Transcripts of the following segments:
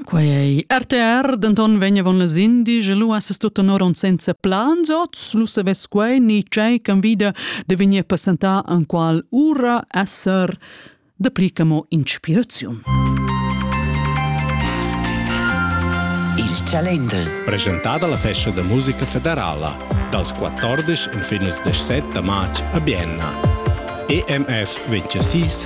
Quei RTR denton vegn avon las indies e lu has tut tenor on senza plans oz, lu savess quei ni tgei ch'en vida de vegnir presentar en qual ura esser de pli che mo inspiraziun. Il Calender. Presentada la festa da musica federala dals 14 fin als 17 març a Bienna. EMF 26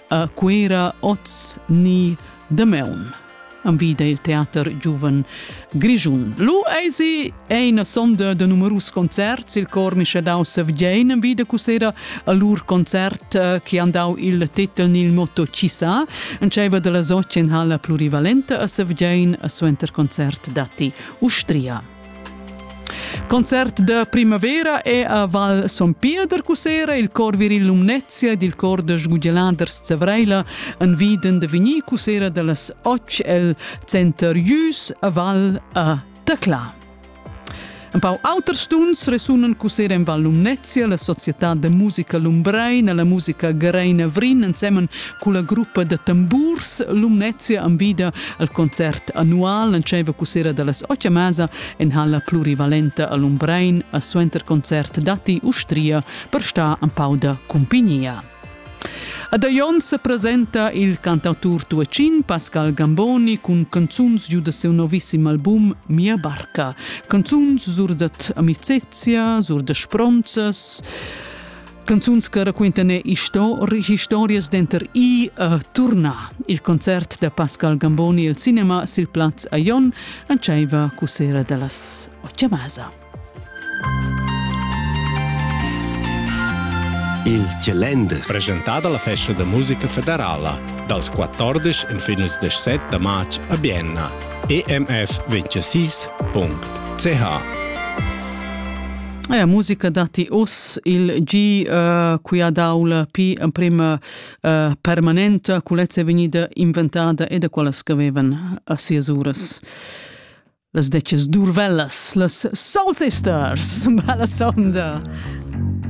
a Cuera oz ni damaun envida il teater giuven Grischun. Lu eisi eine sonda de numerus concerts il cor mischadau Sevgein envida cusera a lur concert eh, che han dau il titel nil motto Chissà. En tscheiva della Sotien ha la plurivalenta a Sevgein a suenter concert datti Ustria. Concert da primavera è a Val Son Pio da Cusera il cor viril Lumnezia ed il cor da sgugeladers Zavreila en viden da vegnir Cusera da las Och el center Jus a Val a Tacla. Un pau auter stuns resunan Cusera en Val Lumnezia, la società de musica Lumbrein e la musica Greina Vrin ensemen culla gruppa da tamburs Lumnezia envida al concert annual entscheiva cussera dallas otg masa en halla plurivalenta a Lumbrein a suenter concert datti Ustria per star en pau da cumpignia. Ad Aion se presenta il cantautur tuacin Pascal Gamboni cun canzuns giu da seu novisssim album Mia barca. Canzuns sur dat amicezia, sur da spronzas, Canzuns che raquintan historias denter i e turna. Il concert da Pascal Gamboni il cinema sil plaz a Jon entscheiva cusera dallas Ochiamasa. Il Calender. Presentada la festa da musica federala dals 14 en fines 17 da marz a Bienna. emf26.ch La musica datti uss il gi uh, quia d'aula pi emprima uh, permanenta, culezza è vegnida inventada e da quellas che avevan a sias uras. Las deces durvellas, las Soul Sisters, bella sonda!